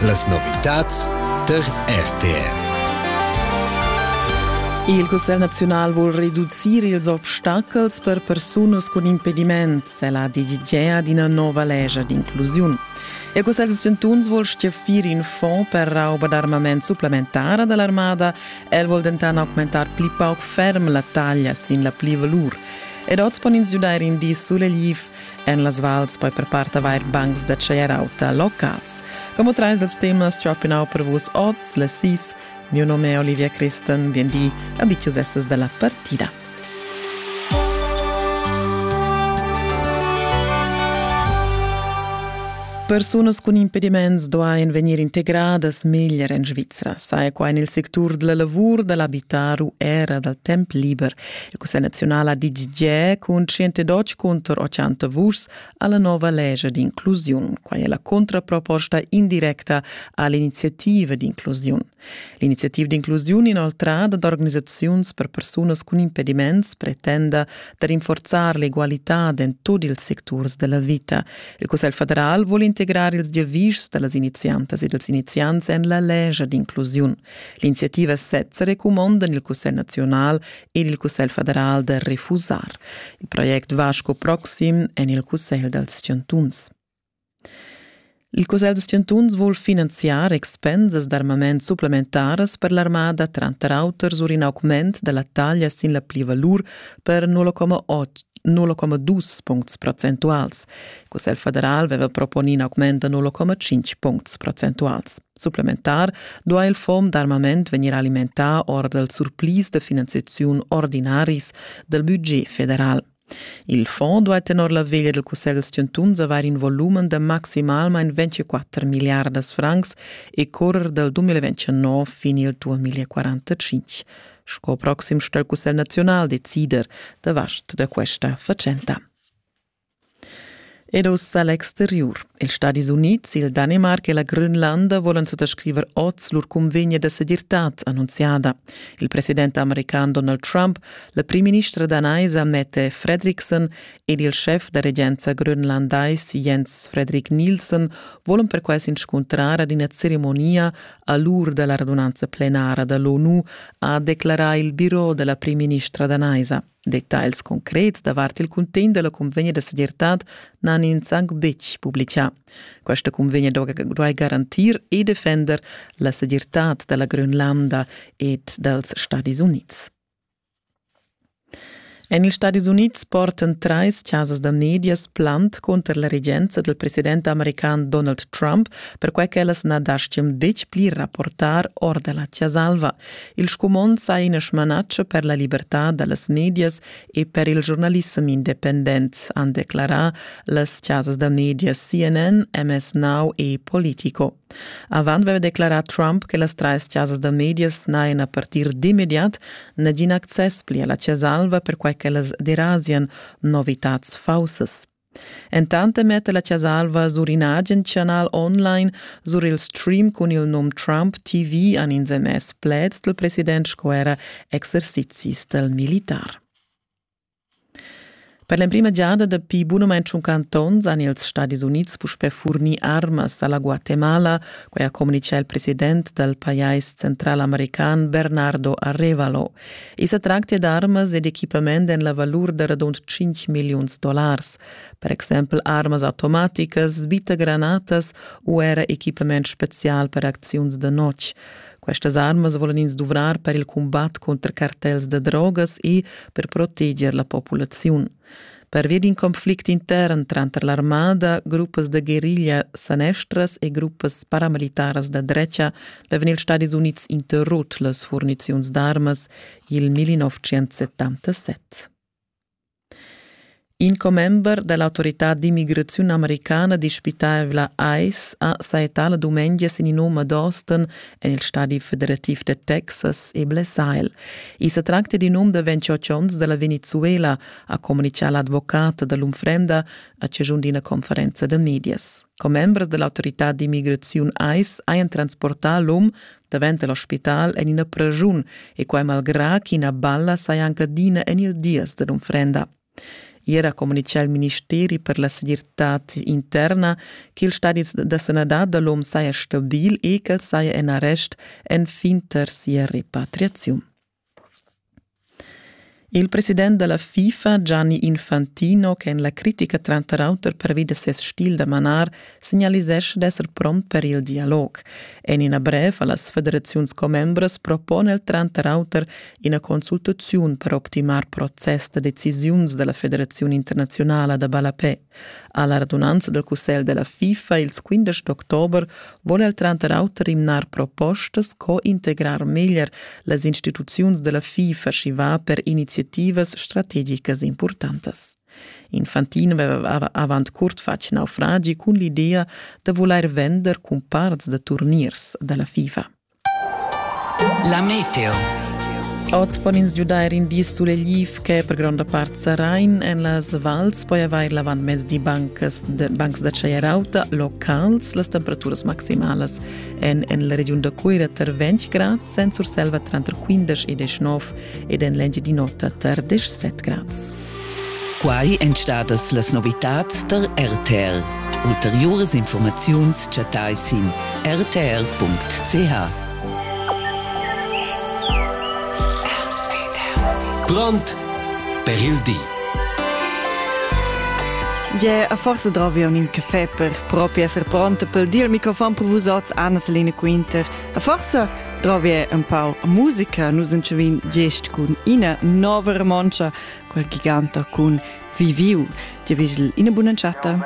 Las novitads tar RTR. Il Cussegl naziunal vul reducir ils obstacels per persunas cun impediment, la d'idea d'ina nova legia d'inclusiun. Il Cussegl da Sintuns vul stiafir in fonds per rauba d'armament supplementara dall'armada. El vul denton augmentar pli pauc ferm la taglia sin la pli-valur. Ed oz pon ins giudair in di sulegliv. en las vals poi per part avair bancs da tschaier auta locals. Como trais dals temas tropinau per vus oz, le sis, Mio nome è Olivia Christen, bien di, abitius essas da la partida. Persunas cun impediments duain vegnir integradas meglier en Svizra, saja qua en il sectur della lavur, da l'abitar u era dal temp liber, La Cussa naziunala DGG cun 112 cunter 80 vuschs alla nova legge d'inclusiun. Quai è la contraproposta indirecta all'iniziativa d'inclusiun. L'iniziativa d'inclusiun inoltrada d'organisaziuns per persunas cun impediments pretenda da rinforzar l'egualità in tutti i sectors della vita. Il Cussegl federal vuole integrare ils giavischs delle iniziantes e dels iniziants en la legge d'inclusiun. L'iniziativa sezza recumonda il Cussegl nazional ed il Cussegl federal da refusar. Il project va sco proxim en il Cussegl dals chantuns. Il Cussegl dals chantuns vul finanziar expensas d'armament supplementaras per l'armada, tranter auter sur in augment da la taglia sin la plivalur per 0,2 puncts procentuals. Il Cussegl federal aveva proponì in augment da 0,5 puncts procentuals. Supplementar duai il fond d'armament vegnir alimentà or dal surplis da finanziaziun ordinaris dal budget federal. Il fond duai tenor la veglia del Cussegl chantuns avair in volumen da maximalmain 24 miliardas francs e correr dal 2029 fin il 2045, sco proxim sto il Cussegl naziunal decider davart da questa fatschenta. Ed uss a l'exteriur. Ils Stadis Unids, il Danemarc e la Grönlanda volan suttascriver oz lur cunvegna da segirtad annunziada. Il president american Donald Trump, la primministra danaisa Mette Fredriksen ed il schef da regenza grönlandais Jens Fredrik Nielsen volan perquai s'inscuntrar ad ina ceremonia a l'ur da la radunanza plenara da l'ONU, ha declarà il biro da la primministra danaisa. Detagls concrets davart il cuntegn dalla convegna da segirtad n'han ins anc betg publicà. Questa convegna duai garantir e defender la segirtad dalla Grönlanda ed dals Stadis Unids. En ils Stadis Unids portan trais chasas da medias plant conter la regenza del president american Donald Trump, perquai ch'ellas na dastgan betg pli rapportar or da la Chasa Alva. Il scumond sa ina smanatscha per la libertad da las medias e per il giornalissem independent, han declarà las chasas da medias CNN, MS Now e Politico. Avant aveva declarà Trump che las trais chasas da medias n'hajan a partir d'immediat nagin access pli a la Chasa Alva perquai ch'ellas derasian novitads faussas. Entant metta la Chas'alva sur in agen chanal online sur il stream cun il num Trump TV han ins emess pleds dal president sco era exercizis dal militar. Per l'emprima giada dapi bunamain tschunquant onns han ils Stadis Unids puspè furnì armas a la Guatemala, quai ha communitgà il president dal pajais centralamerican Bernardo Arevalo. I sa tractia d'armas ed equipament en la valur da radund 5 milliuns dollars, per exempel armas automaticas, bitagranatas u era equipament spezial per acziuns da notg. Questas armas volan ins duvrar per il cumbat cunter cartels da drogas e per proteger la populaziun. Pervia d'in conflict intern tranter l'armada, gruppas da guerriglia sanestras e gruppas paramilitaras da drecha avevan ils Stadis Unids interrut las furniziuns d'armas il 1977. In commember da l'autorità d'immigraziun americana dispitavla ICE ha saettà la dumengia sin in um ad Austin en il stadi federativ da Texas e Blessail. I sa tracta d'in um da 28 onns da la Venezuela, ha communitgà l'advocat da l'unfrenda a chaschun d'ina conferenza da medias. Commembers da l'autorità d'immigraziun ICE hajan transportà l'um davent da l'ospital en ina praschun e quai malgrà ch'ina balla saja anche adina en il dies da l'unfrenda. Ier ha communitgà il ministeri per la segirtad interna ch'il stadi da sanadad da l'om saja stabil e ch'el saja en arrest enfin tar sia repatriaziun. Il president da la FIFA, Gianni Infantino, che en la critica tranter auter pervi da ses stil da manar signalisescha d'esser pront per il dialog. En ina brev a las federaziuns commembras propone el tranter auter ina consultaziun per optimar process da decisiuns della Federazione Internazionale da Ballapè. Alla radunanza del Cussegl della FIFA ils 15 d'october vuole el tranter auter imnar propostas co integrar meglier las instituziuns della FIFA și va per iniziativas strategicas importantas. Infantino veva avant curt fatg naufragi cun l'idea da vulair vender cumparts da turniers dalla FIFA. La meteo. Oz pon ins giudair in di sulegliv che per gronda part sarain en las vals poi avair l'avantmezdi bancs, de, bancs da chaierauta locals. Las temperaturas maximalas èn en la regiun da Cuira tar 20 grad, en Surselva tranter 15 e 19 ed en l'Engiadin'Ota tar 17 grads. Quai èn stadas las novitads tar RTR. Ulteriuras informaziuns chattai sin rtr.ch. Grond per il di. Ge, a forza drovi un in caffè per propi esser pronto per dir il microfon per vus oz, Anna-Selina Quinter. A forza Drovier un pau musica, nus entschevin gest cun ina nova romontscha, quel giganta cun Viviu. Ti vigel ina buna chatta.